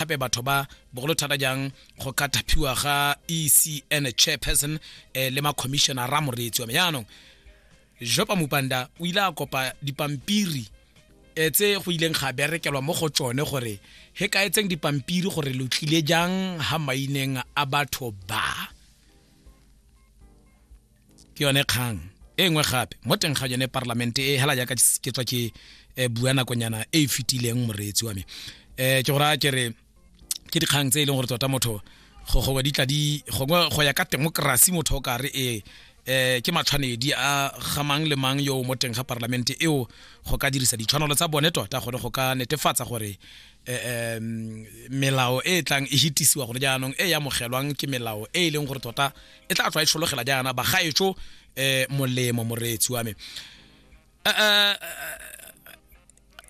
gape batho ba bogolo thata jang go ka thapiwa ga ecn chairperson eh, le macommissiona ra moreetsi wa me jaanong jopa mupanda o ile a kopa dipampiri eh, tse go ileng ga berekelwa mo go tsone gore he ka etseng dipampiri gore lo tlile jang ga maineng a batho ba ke yone kgang e nngwe gape mo teng ga yone parlamente e hela jaaka ke tswa ke eh, bua nakonyana e e fetileng moreetsi wa me um ke go raya ke re ke dikgang tse e leng gore tota motho gongwe di tla di gongwe go ya ka temokerasi motho o ka re ee eh ke matshwanedi a ga mang le mang yo mo teng ga parlamente eo go ka dirisa ditshwanelo tsa bone tota gone go ka netefatsa gore eh, melao e e tlang e hitisiwa gone jaanong e e amogelwang ke melao e e leng gore tota e tla tswa e tshologela jaana bagaetso um eh, molemo moreetsi wa me eh, eh,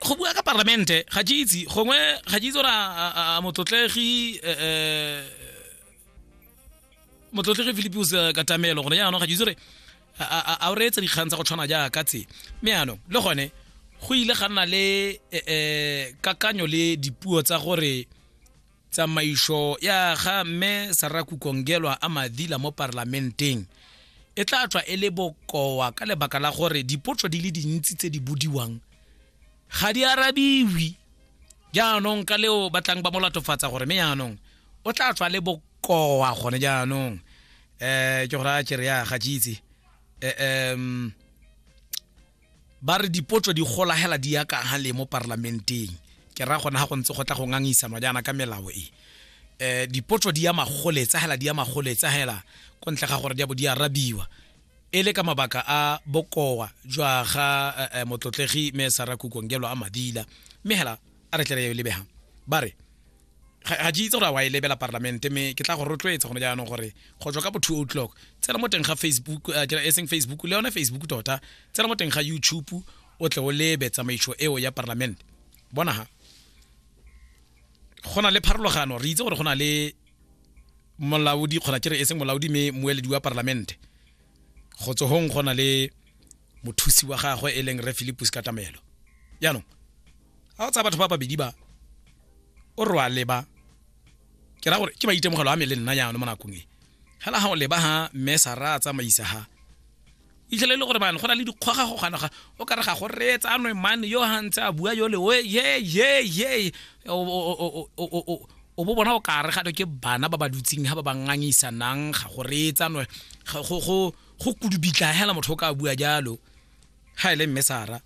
go bua ka parlamente ga ke itse gongwe ga ke itse gore a motlotlegi um motlotlegi philipius katamelo gone jaanong ga ke itse gore a o reetsa dikgang tsa go tshwana jaaka tse mme yanong le gone go ile ga nna le um kakanyo le dipuo tsa gore Tsamaiso ya ga Mme Sarah Kukongelwa a madila mo parlamenteng e tla tswa e le bokoa ka lebaka la gore dipotso di le dintsi tse di bodiwang ga di arabiwi jaanong ka leo ba tlang ba mo latofatsa gore mme jaanong o tla tswa le bokoa gone jaanong um ke gore a kere ya ga ke itse um ba re dipotso di gola hela di ya ka le mo parlamenteng ke ra gona ha go ntse go tla go ngangisanwa jaana ka melao e eh dipotso di ya magoletsa hela di ya magoletsa hela ko ntle ga gore di bo di arabiwa e le ka mabaka a bokowa jwa ga eh, eh, motlotlegi me sara kukongelo a madila mme hela a re tlere yo lebegang ba re ga ke itse gore a wa e lebela parlamente mme ke tla go rotloetsa gone jaanong gore go tswa ka bo two o'clock tsena mo teng ga facebook eh, e seng facebook le yone facebook tota tsena mo teng ga youtube o tle o lebe tsamaiso eo ya parlamente bona ha go na le pharologano re itse gore go na le molaodi kgona ke re e seng molaodi mme moeledi wa parlamente go tsohong go na le mothusi wa gagwe e leng re philipus katamelo jaanong ga o tsaya batho ba babedi ba o re wa leba ke ra gore ke maitemogelo a me le nna jaanong mo nakong e fela ga o leba ga mme sa ra a tsamaisa ga itlhele le gore bane go na le dikgwaga go ganaga o ka re ga go reetsa anwe mane yo ga ntse a bua yole o ye ye ye o bo bona o ka re gato ke bana ba ba dutseng ga ba ba ngangisanang ga go reetsa anwe go kudubitla fela motho o ka bua jalo ga e le mme sara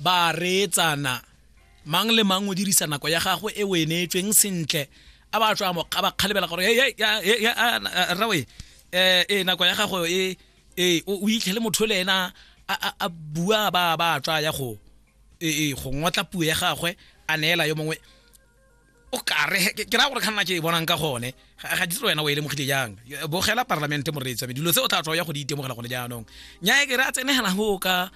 ba reetsana mang le mang o dirisa nako ya gagwe e o e neetsweng sentle a ba tswa a ba kgalebela gore rawe um eh, eh, nako ya gago e, e o itlhele motho le ena a bua ba ba tswa ya go e, e go ngotla puo ya gagwe a neela yo mongwe o kare he- ke ke raya gore kganna ke e bonang ka gone ga ga ditse wena o e lemogile jang Yo- bogela parlamente moreetsi wa me dilo tse o tla tswa ya go di itemogela gone jaanong nyae ke re a tsenegela go ka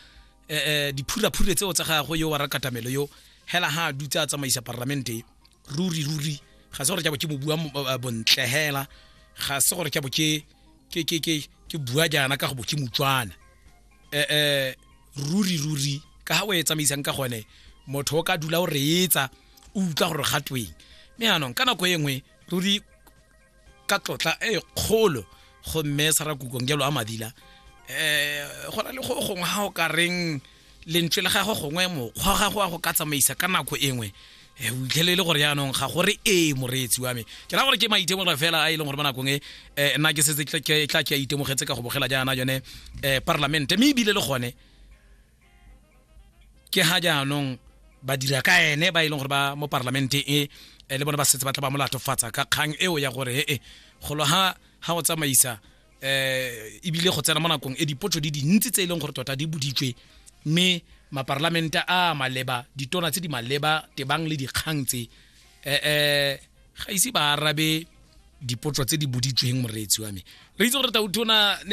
eh, eh, diphuraphure tseo tsa gagwe yo wa rakatamelo yo hela ha a dutse a tsamaisa parlamente ruri ruri ga se gore ke bo ke mo bua mo- eh, bontle hela ga se gore ke bo ke ke ke ke ke bua jaana ka go bo ke motswana eh eh ruri ruri ka ha o e tsamaisang ka gone motho o ka dula o reetsa o utlwa gore ga tweng mme anong ka nako e nngwe ruri ka tlotla e kgolo go mme sarakukong jalo a madila um go na le go gongwe ga o ka reng lentswe le gagwe gongwe mokgwa gagwe wa go ka tsamaisa ka nako e nngwe Eh, o itlhele e le gore yaanong ga gore ee moreetsi wa me ke ra gore ke maitemogelo fela a e leng gore mo nakong e eh, nna ke setse tla ke a itemogetse ka go bogela jaana yone um eh, parlamente mme ebile le gone ke ga jaanong ba dira ka ene ba e leng gore ba mo parlamente e eh, le bone ba setse ba tla ba molatofatsa ka kgang eo ya gore ee eh, golo ga ga go tsamaisa eh ebile go tsena mo nakong e dipotso di dintsi tse e leng gore tota di boditswe mme maparlamente a maleba ditona tse di maleba tebang le dikgang tse eh eh ga ise ba arabe dipotso tse di boditsweng moreetsi wa me re itse gore tautona ne